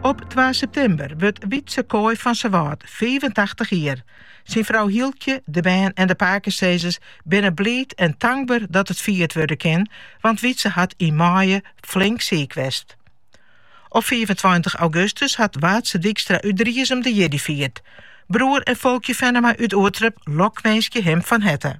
Op twa septimber wurdt Wietse Kooi fan Sawâld fiifentachtich jier. Syn frou Hieltsje, de bern en de pakesizzers binne bliid en tankber dat it fierd wurde kin, want Wietse hat yn maaie flink siik west. Op fiifentweintich augustus hat Waadse Dykstra út Driezum de jierdei fierd. Broer en Folkje Fennema út Oerterp lokwinskje him fan herte.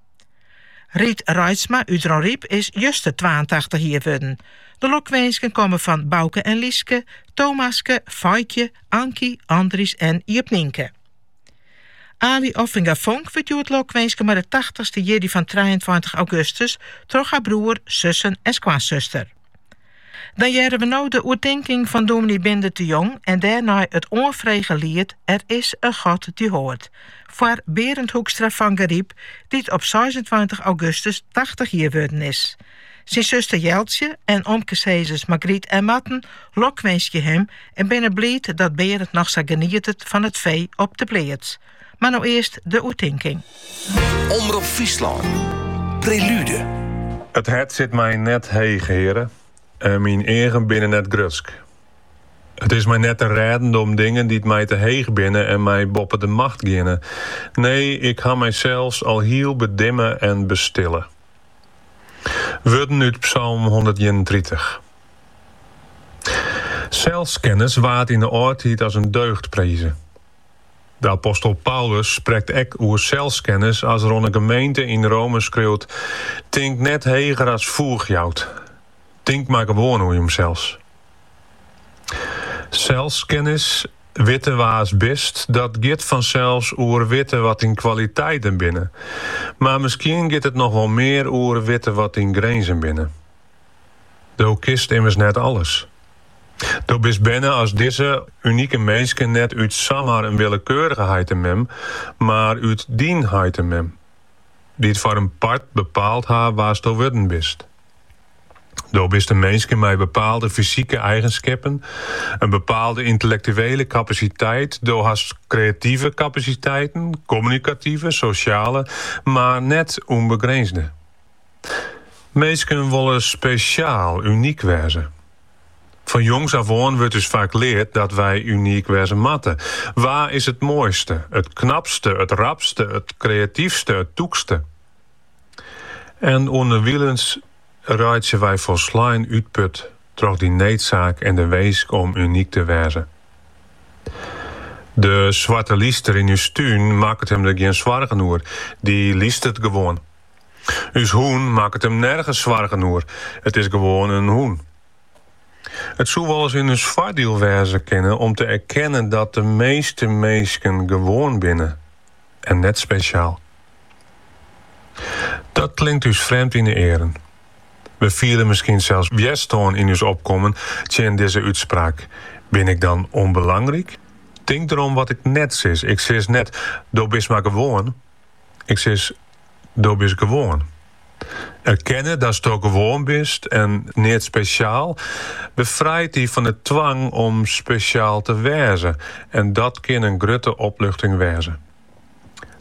Riet Reitsma út Dronryp is juster twaentachtich jier wurden. De lokwinsken komme fan Bauke en Lyske, Thomaske, Feikje, Ankie, Andries en Jip Nienke. Aly Offinga Vonk wurdt hjoed lokwinske mei de tachtichste jierdei fan trijeentweintich augustus, troch har broer, sussen en skoansuster. Dan hearre we no de oertinking fan dominee Bindert de Jong en dêrnei it oanfrege liet Er is een God die hoort foar Berend Hoekstra fan Garyp, dy't op seisentweintich augustus tachtich jier wurden is. Syn suster Jeltsje en omkesizzers Margriet en Marten lokwinskje him en binne bliid dat Berend noch sa genietet fan it fee op de pleats. Mar no earst de oertinking. Omrop Fryslân. Prelude. It hert sit my net heech, Heare, en myn eagen binne net grutsk. It is my net te rêden om dingen dy't my te heech binne en my boppe de macht giene. Nee, ik ha mysels al hiel bedimme en bestille. Wurden út Psalm hûndertienentritich. Selskennis waard yn 'e âldtiid as in deugd prize. De apostel Paulus sprekt ek oer selskennis as er oan 'e gemeente yn Rome skriuwt, Tink net heger as foech jout. Tink mar gewoan oer josels. Selskennis, witte wa's bist, dat giet fansels oer witte wat dyn kwaliteiten binne. Mar miskien giet it noch wol mear oer witte wat dyn grinzen binne. Do kinst immers net alles. Do bist berne as dizze unike minske, net út samar in willekeurige heit en mem, mar út dyn heit en mem, dy't foar in part bepaald ha wa'sto wurden bist. Do bist in minske mei bepaalde fysike eigenskippen, in bepaalde yntellektuele kapasiteit, do hast kreative kapasiteiten, kommunikative, sosjale, mar net ûnbegrinzge. Minsken wolle spesjaal, unyk wêze. Fan jongs af oan wurdt ús faak leard dat wy unyk wêze moatte. Wa is it moaiste, it knapste, it rapste, it kreatyfste, it tûkste? En ûnderwilens reitsje wy folslein útput troch dy needsaak en de winsk om unyk te wêze. De swarte lyster yn ús tún makket him der gjin soargen oer, dy lystert gewoan. Us hûn makket him nergens soargen oer, it is gewoan in hûn. It soe wolris yn ús foardiel wêze kinne om te erkennen dat de measte minsken gewoan binne en net spesjaal. Dat klinkt ús frjemd yn 'e earen. We fiele miskien sels wjerstân yn ús opkommen tsjin dizze útspraak, Bin ik dan ûnbelangryk? Tink derom wat ik net sis, ik sis net, do bist mar gewoan. Ik sis, Do bist gewoan. Erkenne datsto gewoan bist en net spesjaal befrijt dy fan 'e twang om spesjaal te wêze en dat kin in grutte opluchting wêze.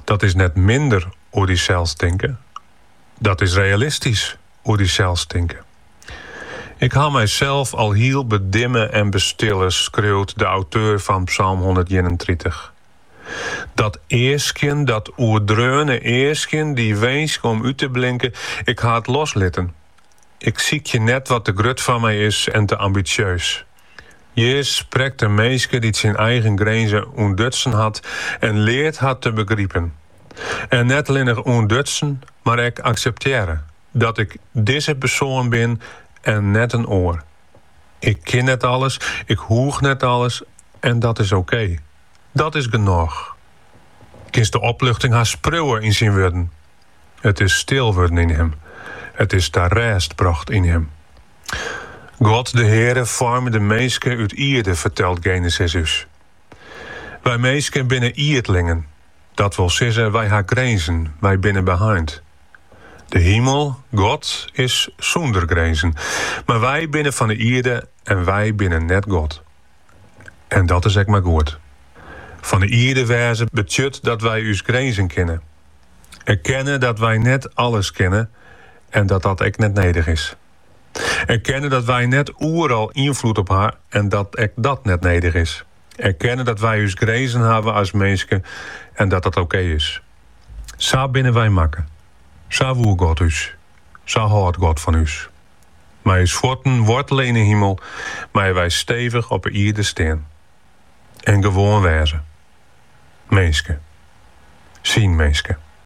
Dat is net minder oer dysels tinke, dat is realistysk oer dysels tinke. Ik ha mysels al hiel bedimme en bestille, skriuwt de auteur fan psalm hûndert-ienentritich. Dat easkjen, dat oerdreaune easkjen, dy winsk om út te blinken, ik ha it loslitten. Ik sykje net wat te grut foar my is en te ambitsjeus. Hjir sprekt in minske dy't syn eigen grinzen ûntdutsen hat en leart hat te begripen. En net allinnich ûntdutsen, mar ek akseptearre dat ik dizze persoan bin en net in oar. Ik kin net alles, ik hoech net alles en dat is oké. Dat is genôch. Kinst de opluchting hast priuwe yn syn wurden. It is stil wurden yn him. It is ta rêst brocht yn him. God de Heare foarme de minske út ierde, fertelt Genesis ús. Wy minsken binne ierdlingen. Dat wol sizze, wy ha grinzen, wy binne beheind. De himel, God, is sûnder grinzen, mar wy binne fan 'e ierde en wy binne net God. En dat is ek mar goed. Fan 'e ierde wêze betsjut dat wy ús grinzen kinne. Erkenne dat wy net alles kinne en dat dat ek net nedich is. Erkenne dat wy net oeral ynfloed op ha en dat ek dat net nedich is. Erkenne dat wy ús grinzen hawwe as minske en dat dat okee is. Sa binne wy makke. Sa woe God ús. Sa hâldt God fan ús. Mei ús fuotten woartele yn 'e himel, meie wy stevich op 'e ierde stean. En gewoan wêze. Minske. Syn minske.